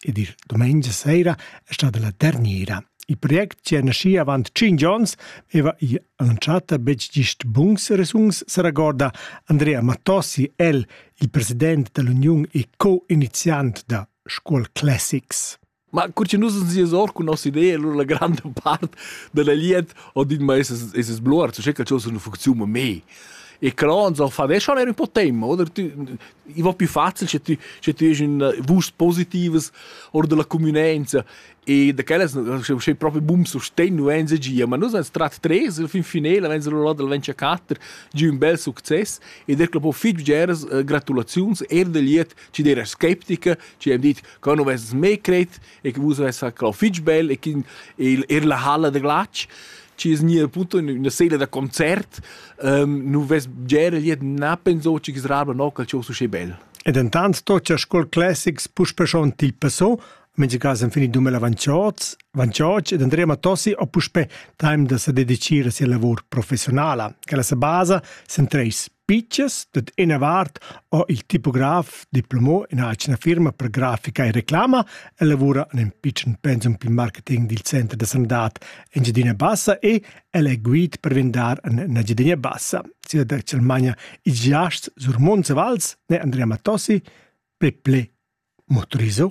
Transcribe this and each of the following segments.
ed il domenica sera è stata la terniera. Il project che è nascì avant 5 onns aveva in anzchata betg gist buns resuns, se regorda Andrea Mattossi, el, il president dell'Union e co-iniziant da Scuol Classics. Ma cur che nus ens or cun nossa idea, allora la grande part della liet ho dit ma es es es bluar, so che calcio sun funziun ma me. E Cronzo fa «Weißt du, er un po' temma», oder? Tu, i va più facil se tu, se tu hes un vust positives oder della communenza e da quellas sei proprio bum sostenno enza gia ma nus ans trat tres il fin finale wenn sie lo del venture catter giù un bel succes e der club fitg geras gratulaziuns er del liet ci der skeptiker ci hem dit che non vess mai cret e che vus vess quel fitg bel e che er la halla da glatsch ci es gnir appunto üna sela da concert um, nu vess gera liet na penso che srabla no cal cios usche bel E dentant sto cha Scuol Classics puspe schon til passo, mentre cas han finit dume la Vanciozz, Vanciocc ed Andrea Matossi ho puspe time da se dedicire sia lavor professionala, che la sa basa sen treis Pitschas dad ina vart ha il tipograf diplomà in atgna firma per grafica e reclama e lavura en in pitschen pensum pil marketing dil center da sanadad Engiadina Bassa e el è guid per vendar en Engiadina Bassa. Sia da Germania ils giasts sur Monzevals ne Andrea Matossi, Peple Motoriso.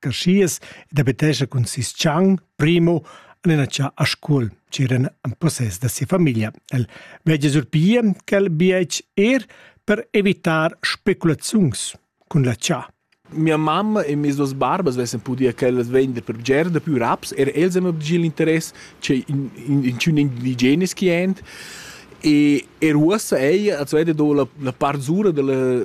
carschias ed abitescha cun sis tschang, primo, en ina cha a Scuol, ch'eran en possess da sia famiglia. El veggia surpia quel bietg er per evitar speculaziuns cun la cha. Mia mamma e mes duas barbas vessen pudia quellas vender per bger da più raps, er els hanno obgir l'interess che in, in, in tschun indigenes chi end. E er uossa ella als vede do la, la part zura della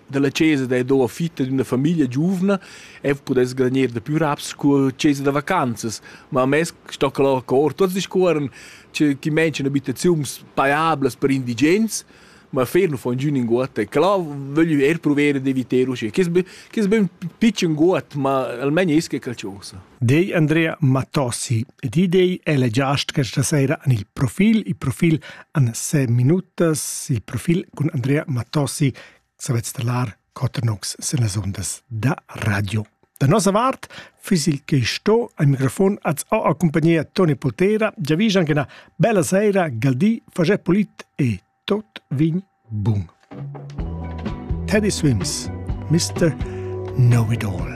dalla chesa da do fitta d'una famiglia giuvna e pudess granir da più raps cu chesa da vacanzas, ma mez sto que lur cor tots discuorren che chi mention abitaziuns paiablas per indigens, ma fer nu fon giü ninguot e clà vöglü eir pruver d'eviter uschè. Chi es be chi es be ün pitschen guot, ma almain es que qualchosa. dei Andrea Matossi ed id ei ella giast questa sera en il profil. Il profil en se minutas, il profil cun Andrea Matossi savets talar Cotternox sen las ondas da radio. Da nossa vart fis il che sto al microfon az ho a compagnia Toni Poltera, già visan che una bella sera, galdi, faget polit e tot vin bun. Teddy Swims, Mr. Know It All.